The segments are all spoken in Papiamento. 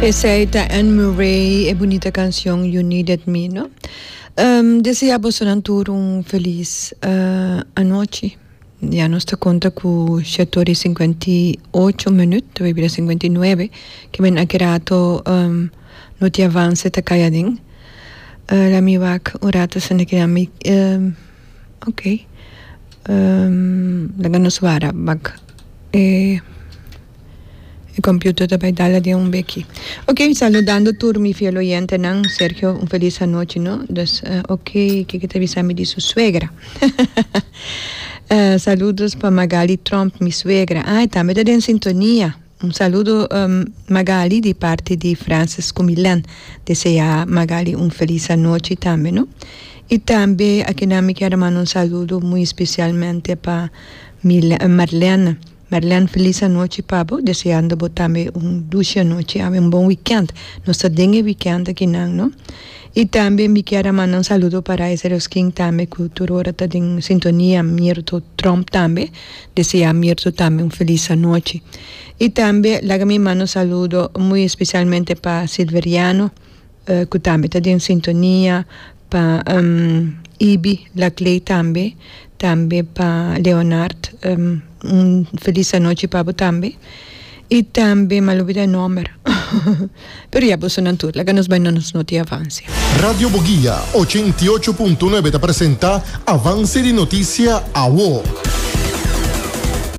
Esey ta Anne Murray e bunita cancion You Needed Me no. Um desea bosonan tur un feliz uh anochi. Ya nos ta conta cu shet ora y cincuenta y ocho minuut ta bay bira cincuenta y nuebe kimen aki rato um noti avance ta cay aden. Uh laat me wak un rato esnan aki na mi um ok um laga nos wara bak e. E computer ta bay dala den un beki. Ok, saludando tur mi fiel oyentenan. Sergio, un feliz anochi no. Dus, ok, kiko ta bisa mi di su suegra? Saludos pa Magaly Tromp, mi suegra. Ah, e tambe ta den sintonia. Un saludo Magaly di parti di Francis cu Milan. Desea Magaly un feliz anochi tambe no. Y tambe akinan mi kier a manda un saludo muy specialmente pa Mil-, Marlene. Merlene feliz anochi pa bo deseando bo tambe un dushi anochi awe un bon weekend nos ta den e weekend aki nan no y tambe mi kier a manda un saludo para ese roskin tambe cu tur ora ta den sintonia mirto trump tambe desea mirto tambe un feliz anochi y tambe laga mi manda un saludo muy especialmente pa silveriano. cu tambe ta den sintonia pa Ibi Laclay tambe tambe pa Leonard un feliz anochi pa bo tambe y tambe m'a lubida e nomber pero ya boso nan tur laga nos bay na nos noti avance. Radio Boguia ochenta i ocho punto nuebe ta presenta Avance di Noticia, Awo.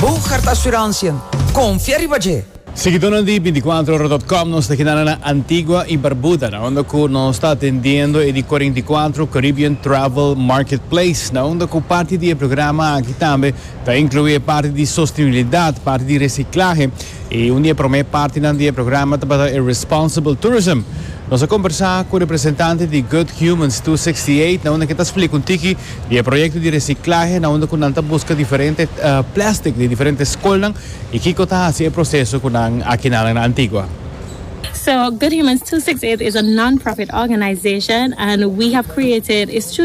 Bo Carta Asuransian, Konfia riba dje! Seguidónan di binticuatro ora dot com, nos ta keda na Antigua i Barbuda, na unda cu nos ta atendiendo e di cuarenta i cuatro Caribbean Travel Marketplace, na unda cu parti di e programa aki tambe ta inclui e parti di sostenibilidad, parti di reciclahe, i un di e prome partinan di e programa tabata e Responsible Tourism. Nos a combersa cu representante di Good Humans two sixty eight, na unda ke ta splica un tiki Di e proyekto di resiklahe na unda ku nan ta buska diferente plèstik di diferente skolnan i kiko ta hasi e proseso ku nan a kina nan na Antigua. So Good Humans 268 is a non-profit organization and we have created is